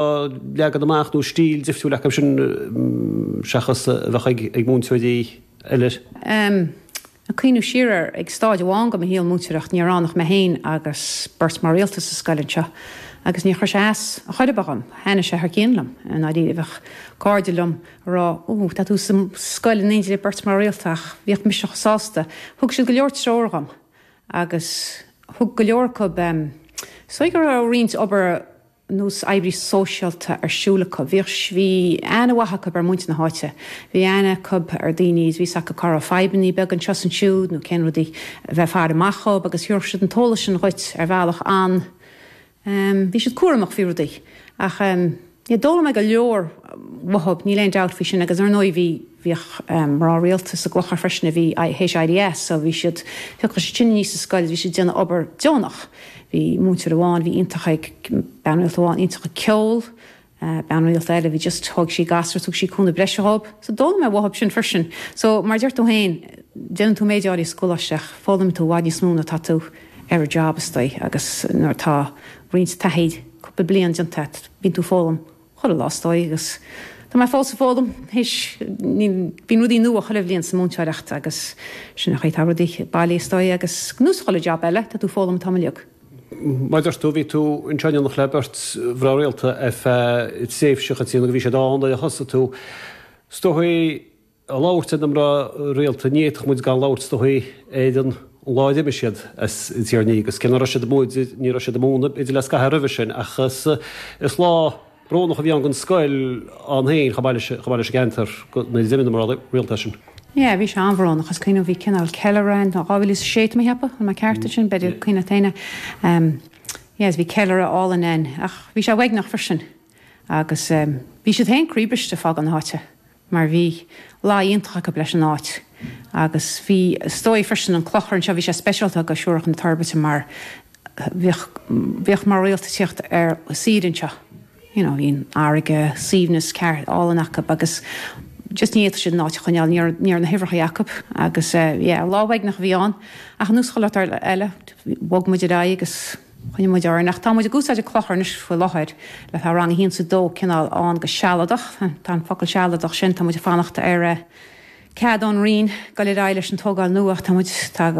á leagan amach nó stíl difriúil acu sin seachas a bheadh ag múinteoirí eile. Um a cuimhniú siar air, ag stáid amháin de mo shaol múinteoireachta ní raibh ann ach mé féin agus beirt mná rialta sa scoil anseo agus níor chuir sé as ar chor ar bith dhom. Thaitnigh sé thar cionn liom, i ndáiríre. Bheadh cairde liom ag rá, 'Ó, tá tú sa scoil in éindí le beirt mná rialta' ach bhíodh mise chomh sásta. Thug siad go leor treoir dhom agus bhíodh go leor acu, um, bhídís ag déanamh roinnt obair, nós obair shóisialta ar siúl acu. Bhíodh, bhí aithne mhaith acu ar mhuintir na háite, bhí aithne acu ar dhaoine agus bhí a fhios acu cá raibh fadhbannaí beaga anseo is ansiúd nó cén rudaí a bheith ag faire amach dhób agus thiúrfadh siad an t-eolas sin dhuit ar bhealach an, em, bhí siad cúramach faoi rudaí ach, em, yeah, d'fhoghlaim mé go leor uathub, níl aon dabht faoi sin agus ar ndóigh bhí. bhíodh mná rialta sa gclochar freisin a bhí th'éis éirí as so bhí siad, thiocfadh siad sin aníos sa scoil, bhí siad ag déanamh obair deonach. Bhí múinteoir amháin a bhí iontach ag, bean rialta amháin, iontach ag ceol, bean rialta eile a bhí just, thóig sí gasúir, thug sí cúnamh breise dhób. So d'fhoghlaim mé uathub sin freisin. So mar a deir tú féin, déanann tú méid áirithe sa gcoláiste ach foghlaimíonn tú i bhfad níos mó nuair atá tú ar an job is dóigh agus nuair atá roinnt taithí, cúpla bliain déanta agat, bíonn tú ag foghlaim Chuile lá is dóigh agus tá mé fós ag foghlaim, th'éis, níl, bíonn rudaí nua chuile bhliain sa múinteoireacht agus sin an chaoi a bhfuil rudaí, bhuel, is dóigh agus ar nós chuile job eile tá tú ag foghlaim an t-am uilig. Mar a dúirt tú, bhí tú anseo in éineacht le beirt mhná rialta ar feadh tréimhse, a Chaitríona, go raibh siad ann nuair a thosaigh tú. Is dóigh, ag labhairt ar na mná rialta, ní fhéadfadh muid gan labhairt is dóigh ar an lá a d'imigh siad as Tír an Fhiaigh, is cé nach raibh siad amuigh idir, ní raibh siad ag múineadh idir le scaitheamh roimhe sin, ach is, is lá brónach a bhí ann don scoil ann féin, chomh maith leis, chomh maith leis an gceantar go, nuair a d'imigh na mná rialta as sin. Yeah, bhí sé an-bhrónach, is cuimhin liom bhí cineál ceiliúradh ann, 2006 tá mé ag ceapadh, an bhfuil mé ceart ansin, b'fhéidir yeah, cuimhne taine, em, yes, bhí ceiliúradh álainn ann ach bhí sé uaigneach freisin agus em bhí siad féin croíbhriste ag fágáil na háite. mar bhí grá iontach acu leis an áit agus bhí, is dóigh freisin an clochar anseo, bhí sé speisialta do Shiúracha na Toirbhirte mar bhíodh, bhíodh mná rialta ag tíocht ar saoire anseo, you know, bhí an fharraige, suaimhneas ceart, álainn acu agus just ní fhéadfadh siad an áit a choinneáil, ní raibh, ní raibh na huimhreacha acu agus yeah, lá uaigneach a bhí ann ach ar nós chuile shórt eile, bhog muid ar aghaidh agus. Choinnigh muid orainn, ach tá muid ag úsáid an clochar anois faoi láthair le Tá rang a haon is a dó cineál ann go sealadach. Tá an focal sealadach sin, tá muid ag fanacht ar chead ón Roinn dul ar aghaidh leis an tógáil nua ach tá muid tá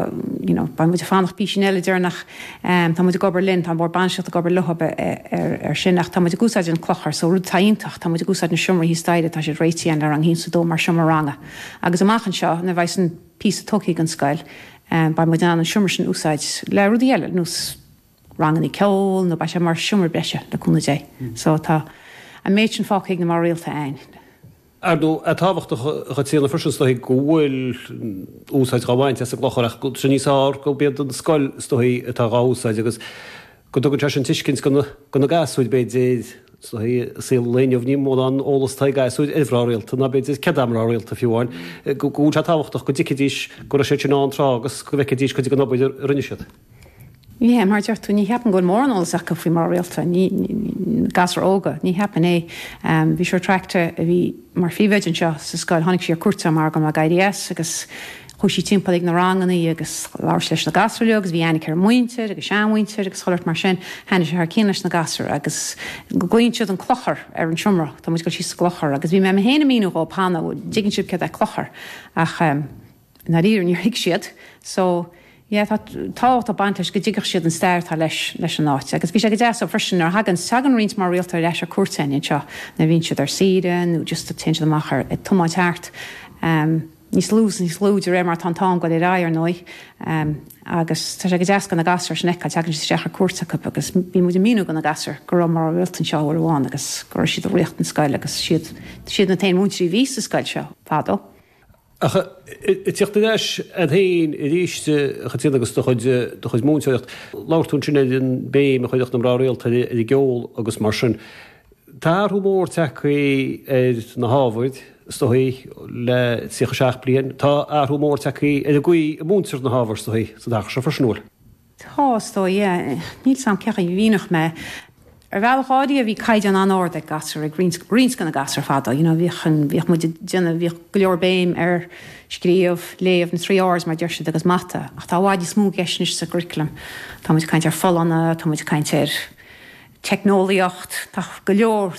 you know beidh muid ag fanacht písín eile déarfainn. Tá muid ag obair linn, tá an Bord Bainistíocht ag obair leo ar sin ach tá muid ag úsáid an clochar so rud atá iontach, tá muid ag úsáid na seomraí thíos staighre, tá siad réitithe ann le rang a haon is a dó mar seomra ranga agus amach anseo nuair bheidh san píosa tugtha ag an scoil, beidh muid in ann an seomra sin a úsáid le rudaí eile nós rangannaí ceoil nó beidh sé mar seomra breise, le cúnamh Dé. So tá an méid sin fágtha ag na mná rialta ann. Ar ndóigh, tá tábhacht, a Chaitríona, freisin, is dóigh, go bhfuil úsáid dhá bhaint as an gclochar agus níos fearr, gurb iad an scoil, is dóigh, atá dhá úsáid agus. go dtugann sé sin tuiscint do na gasúir, b'fhéidir, i saol an lae inniu, ní mórán eolas atá ag gasúir ar mhná rialta, ná b'fhéidir céard iad mná rialta fiú amháin, go bhfuil sé tábhachtach go dtuigfidís go raibh siad sin ann tráth agus go bhfeicfidís cuid den obair a rinne siad. Ní, mar a deir tú, ní cheapaim go bhfuil mórán eolas acu faoi mná rialta, gasúir óga, ní cheapaim é. Bhí Siúr Traichte a bhí mar phríomhoide anseo sa scoil, tháinig sí ar cuairt ann mar go mbeadh éirí as agus Chuaidh sí timpeall ag na rangannaí agus labhair sí leis na gasúir leo agus bhí aithne aici ar a muintir agus seanmhuintir agus chuile shórt mar sin. Thaitin sí thar cinn leis na gasúir agus glaonn siad an clochar ar an seomra. Tá muid dul síos sa gclochar agus bhí mé mé fhéin ag míniú dhóib an dtuigeann sibh céard é clochar ach ehm i ndáiríre níor thuig siad so yeah tá tábhacht ag baint leis go dtuigfeadh siad an stair atá leis leis an áit agus bhí sé go deas so freisin nuair a thaganns tagann roinnt mná rialta ar ais ar cuairt a'inn anseo nuair a bhíonn siad ar saoire nó just téann siad amach ar ag tiomáint thart ehm. níos lú 's níos lú de réir mar atá an t-am ag dul ar aghaidh ar ndóigh agus tá sé go deas go na gasúir sin a fheiceáil, teagann siad isteach ar cuairt acu agus bíonn muid ag míniú go na gasúir go raibh mná rialta anseo uair amháin agus go raibh siad ag ríocht an scoil agus siad siad na t-aon mhúinteoirí a bhí sa scoil seo fadó. Ach ag tíocht ar ais a'd féin aríst a Chaitríona agus do chuid, do chuid múinteoireacht, labhair tú ansin ar an béim a chuireadh na mná rialta ar an gceol agus mar sin. Tá athrú mór tagtha ar na hábhair, is dóigh, le tríocha seacht bliain. Tá athrú mór tagtha ar an gcaoi a múintear na hábhair, is dóigh, sa dtaca seo freisin, an bhfuil? Tá, is dóigh, yeah. Níl 's a'm cé chaoi a mhíneodh mé é. Ar bhealach áirithe bhí caighdeán an-ard ag gasúir, ag roinnt, roinnt de na gasúir fadó, you know, bhíodh an, bhíodh muid ag déanamh, bhíodh go leor béim ar, scríobh, léamh, na trí r's mar a deir siad, agus mata. Ach tá i bhfad níos mó i gceist anois sa gcurriculum. Tá muid ag caint ar folláine, tá muid ag caint ar teicneolaíocht, tá go leor.